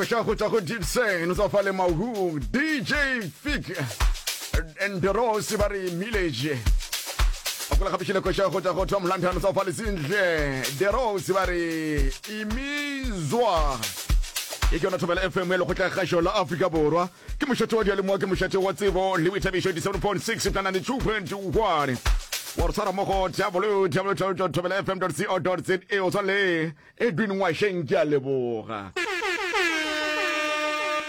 koša go tšwa go dipsen sa fa le mahu dj fik and rose ba re millage akola gape šile koša go tšwa go tom london sa fa le sentle the rose ba re imizwa e ke yona thobela fm ya lekgotla kgašo la afrika borwa ke mošate wa dialemoa ke mošate wa tsebo le boithabišo 7.6 kana le 2.1 wa re tshwara mo go www thobela fm co za o swanele Edwin Ngwasheng ke a leboga.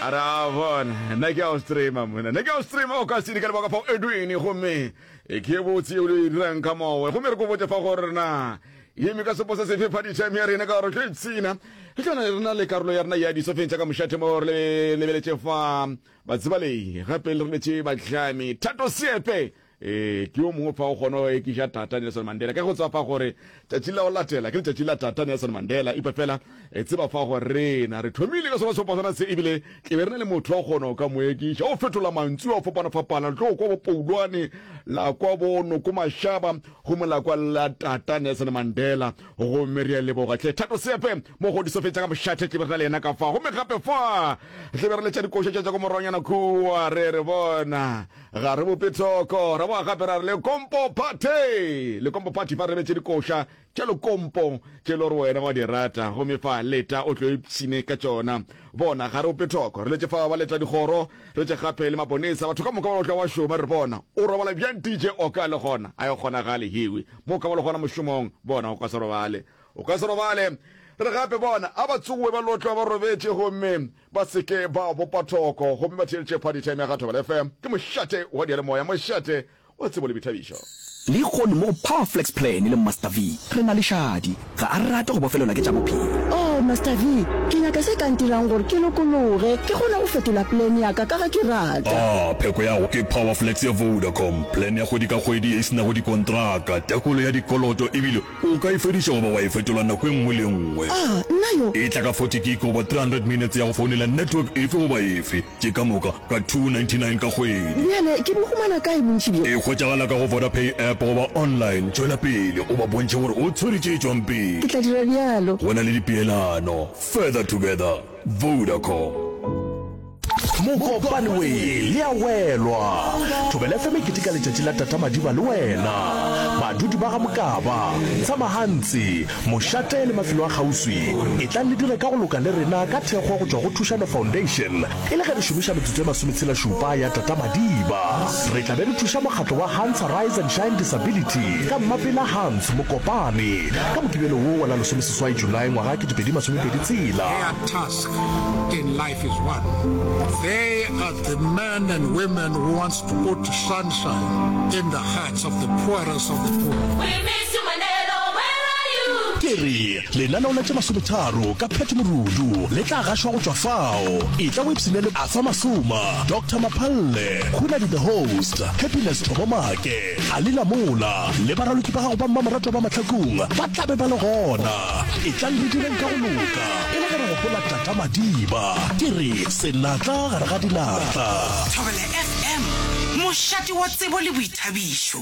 A re a bona nna ke a o streama mona nna ke a o streama o ka sedi ka lebaka fao Edwin gomme e ke botse yeo le e dirang ka mowe gomme re ko botse fa go rena yeme ka sepo se sefe phadišeme ya rena ka gore ke tshina e tla re na le karolo ya rena ya disofeng tša ka mošate mo re lebeletše fa batsibalei gape le re letse batlami thato seepe Ee, ke yo mongwe fa o kgona go ekiša Tata Nelson Mandela. Ka go tseba fa gore tšatši la go latela ke letšatši la Tata Nelson Mandela, epa fela e tseba fa gore rena re thomile ka sona sefapasana se ebile ke be re na le motho wa kgona o ka mo ekiša. O fetola mantswe wa fapana-fapana, le tlo kwa bo Poulwane, la kwa bo Noko Mashaba, gomme la kwa la Tata Nelson Mandela. Gomme re a leboga hle Thato Sepe, mogodisa o fetša ka mošate tle be re na le yena ka fa. Gomme gape fa tle be re letša dikoša tša tša ko moronyana kua, re re bona. Ga re bope tsoko, ra boa gape ra re le kompo phathe, le kompo phathe fa re betse dikoša tša lekompo tše le gore wena wa di rata, gomme fa leta o tlo ipsine ka tšona. Bona, ga re bope thoko, re letše fa ba leta dikgoro, re tše gape le maponesa, batho ka moka ba otla wa šoma, re bona, o robala bjang DJ Oka le gona, a e kgonagale hewi, mo ka ba le gona mošomong, bona, o ka se robale, o ka se robale, re gape bona, a ba tsogoe ba lotlwa ba robetše, gomme. Ba se ke ba bopa thoko gomme ba theeletše Party Time ya ga Thobela FM. Ke mošate wa diyalemoya, mošate wa tsebo le boithabišo. Lehono mo Power Flex Plan le Master V re na le šadi. Ga a rate go bofelelwa ke tša bophelo. Oh, Master V, ke nyaka se ka ntirang gore ke lokologe, ke kgone go fetola plan ya ka ka ga ke rata. Ah, pheko ya go ke Power Flex ya Vodacom. Plan ya kgwedi ka kgwedi e se nago dikontraka, tekolo ya dikoloto e bile O ka e fediša goba wa e fetola nako e nngwe le e nngwe. A na yo. E tla ka 40 gig goba 300 minutes ya go founela network efe goba efe, tše ka moka ka 299 ka kgwedi. Bjale ke bo humana kae bontši bjo? E hwetšagala ka go Vodapay app goba online. Tšwela pele o ba bontšhe gore o tshwere tše tšwang Ke tla pele. dira bjalo. Go na le dipeelano. Further together. Vodacom. mokopane we le ya welwa thobela fm e keteka letšatši la tata madiba le wena badudi ba ga mokaba tshamagantsi mošate le mafelo a kgauswi e tlang le dire ka go loka le rena ka thekgo go tšwa go thušano foundation e le ge re šomiša metsotso e masometshela šupa ya tata madiba re tla be re thuša mokgatlo wa hans rise and shine disability ka mmapela hans mokopane ka mokibelo wo wa la lesomeseswai july ngwaga 2022 tsela Ke re, lenaneo la tše masometharo ka Pat Morudu le tla gašwa go tšwa fao. Etla o ipshine le Arthur Masuma, Doctor Maphalle, Hunadi the Host, Happiness Thobomake, Alina Mola le baraloki ba gago ba mmamoratwa ba mahlakong ba tla be ba le gona. Etlang re direng ka go loka e le ge re gopola Ka madiba ke re senatla gare ga dinatla. Thobela FM, mošate wa tsebo le boithabišo.